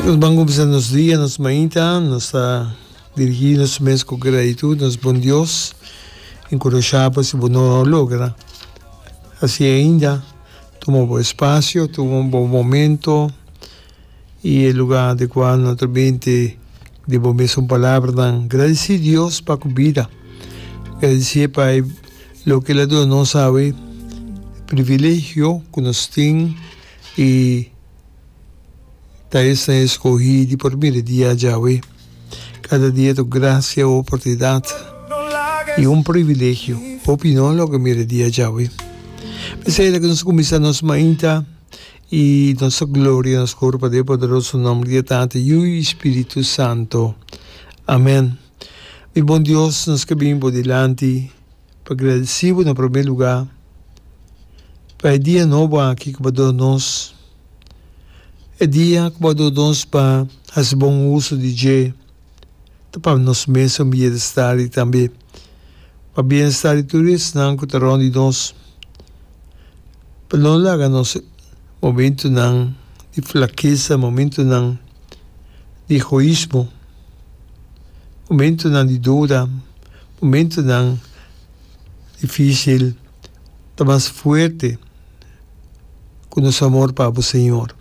Nos ban cuminsa nos dia, nos mañita, nos ta dirigi nos mes cu gratitud nos bon Dios y cu nos shaba si bo no lo logra haci ainda tuma bo espacio, tuma bo momento y e lugar adecua naturalmente di bo mes un palabranan gradici Dios pa cu bida, gradici pa loke el a duna nos awe, privilegio cu nos tin y. Ta esnan escogí di por bira di ya Jahwe. Cada dia ta un gracia, un oportunidad y un privilegio hopi di nos lo ke mira di ya Jahwe. P'esei lo ke nos ta cuminsa nos mainta y nos ta gloria nos cor pader e poderoso nomber di ya Tata, Yu y Espiritu Santo. Amen. Mi bon Dios, nos ke bini bo dilanti. Pa gradesí bo na promé lugá pa e dia nobo aki ku bo a dor nos. E dia ku bo a dor nos pa hasi bon uso di dje ta pa nos mes un bienestá i tambe pa bienestá di tur esnan ku ta rònt di nos. Pa no laga nos momentunan di flakesa, momentunan di egoismo, momentunan di dora, momentonan difícil ta mas fuerte ku nos amor pa bo Señor.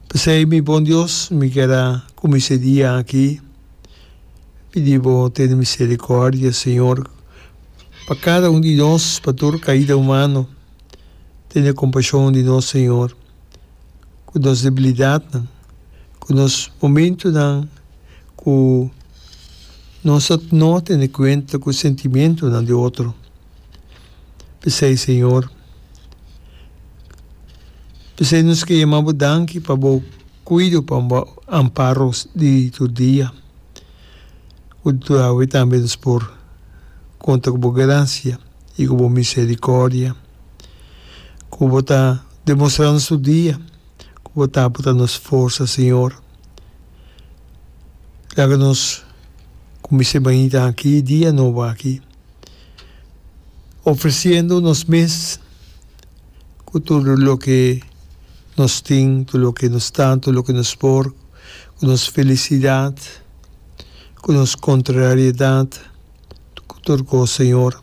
P'esei mi bon Dios, mi keda ku mi se dia aki pidi bo tene misericordia Señor pa kada un di nos, pa tur kaida humano, tene compashon di nos Señor. ku nos debilidatnan, ku nos momentunan ku nos ta no tene kuenta ku sentimentunan di otro. P'esei, Señor, p'esei nos ke yama Bo danki pa Bo kuido, pa Bo amparo di tur dia, ku tur awe tambe nos por konta ku Bo grasia. i ku bo miserikòrdia, ku bo ta demostrá nos tur dia ku bo ta aportá nos forsa, Señor. Laga nos kumins'é bañita aki, e dia nobo aki, ofresiendo nos mes ku tur loke nos tin, tur loke nos ta, tur loke nos por, ku nos felisidat, ku nos kontrariedat. ku tur kos, Señor.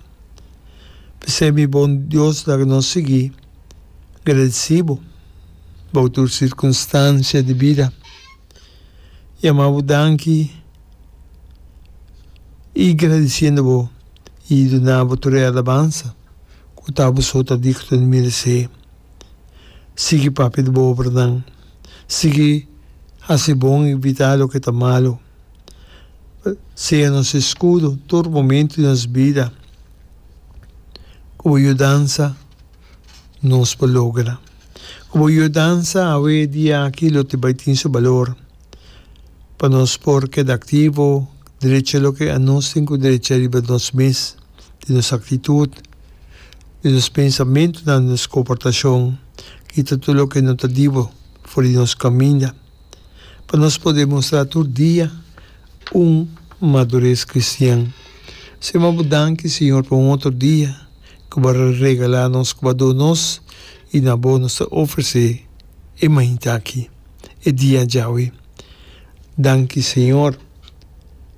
P'esei mi bon Dios laga nos sigui gradisí bo bou tur sirkunstansia di bida. Yama bo danki i gradisiendo bo i duna bo tur e alabansa ku ta bo so ta digno di meresé. Sigui papia di bo obranan. Sigui hasi bon i bita loke ta malu. Sea nos escudo tur momento di nos bida, cu bo yudansa nos por logra. Cu bo yudansa awe diachi lo tin bai tin su balor pa nos por keda activo, drecha loke anos tin cu drecha riba nos mes, di nos actitud, di nos pensamentonan, di nos comportacion, kita tur loke no ta dibo for di nos caminda. pa nos por demostrá tur dia un madures kristian. Sema bo danki, Señor, pa un otro dia ku bo a regalá nos, ku bo a do nos, i na bo nos ta ofresé e mainta aki, e dia djawe. Danki, Señor,